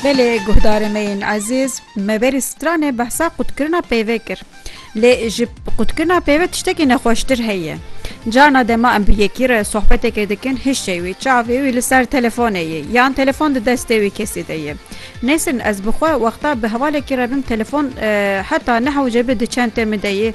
Belê guhdarê me yên ezîz, me berî stranê behsa qutkirina peyvê kir. Lê ji qutkirina peyvê tiştekî nexweştir heye. Carna dema em bi yekî re sohbetekê dikin hişê wî, çavê wî li ser telefonê ye yan telefon di destê wî kesî de ye. Nêsrin ez bi xwe wexta bi hevalekî re bim telefon heta nehewce bi di çentê min de ye.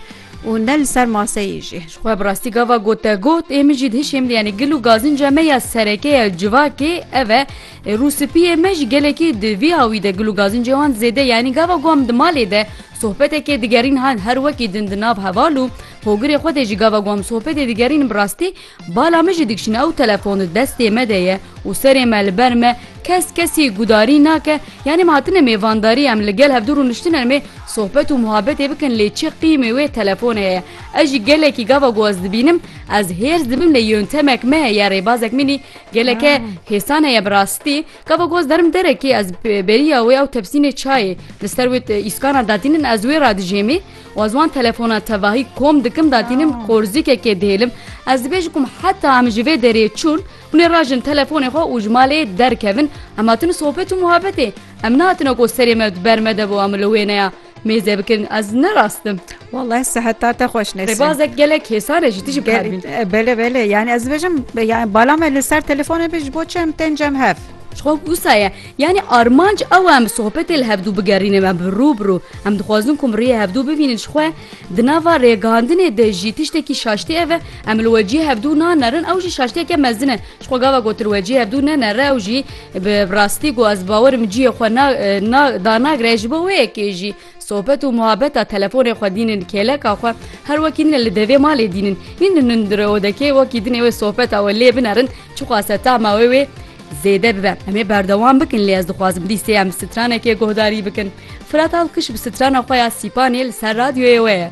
û ne li ser maseyê jî. Xwe bi rastî gava gotegot, ê min jî dihişê min yanî gil û gazinca me ya sereke ya civakê ev e. Rûspiyê me jî gelekî di vî awî de gil û gazincê wan zêde yanî gava ku em di malê de sohbetekê digerîn her wekî din di nav heval û hogirê xwe de jî gava ku em sohbetê digerînin bi rastî Bala min jî dikşîne ew telefon di destê me de ye û serê me li ber me kes kesî gudarî nake yanî me hatine mêvandarî em li gel hevdû rûniştine me sohbet û muhabetê bikin lê çi qîmê wê telefone ye ez jî gelekî gava ku ez dibînim ez hêrs dibim lê yontemek me heye rêbazek min î geleke hêsan heye bi rastî gava ku ez derim derekê ez beriya wê ew tepsînê çayê li ser wê îskana datînin ez wê re dijêmê Wa ziwan telefona tevahî kom dikim da dînim qorzîkekê dihêlim. Ez dibêjim kum heta em ji vê derê çûn hûn ê rajin telefonê xwe û ji malê derkevin. Em hatin sohbet û muhabetê. Em nehatine ku serê me di ber me de bo em li wê neya mêze bikin. Ez ne rast im. Wallahî seheta te xweş Nesrin. Rêbazek gelek hêsan e ji tijî bikar bîn. Belê belê yani ez dibêjim yani bala me li ser telefonê be ji bo çi em tên cem hev. Ji xwe wisa ye. Yanî armanc ew e em bi sohbetê li hevdû bigerînin em bi rû bi rû. Em dixwazin ku em rêyê hevdû bivînin ji xwe. Di nava rêgihandinê de jî tiştekî şaştî ev e, em li we cihê hevdû nanerin ew jî şaştiyeke mezin e. Ji xwe gava gotin we cihê hevdû nenere ew jî bi rastî ku ez bawer im cihê xwe na na danagre ji bo wê yekê jî. Sohbet û muhabeta telefonê xwe dînin kêleka xwe her wekî din e li devê malê dînin. Nîn li nundire odekê wekî din ê wê sohbeta wê lê binerin çiqase tama wê wê zêde bibe. Em ê berdewam bikin lê ez dixwazim dîsê em bi stranekê guhdarî bikin. Firat Alkiş bi strana xwe ya Sîpanê li ser radyoyê we ye.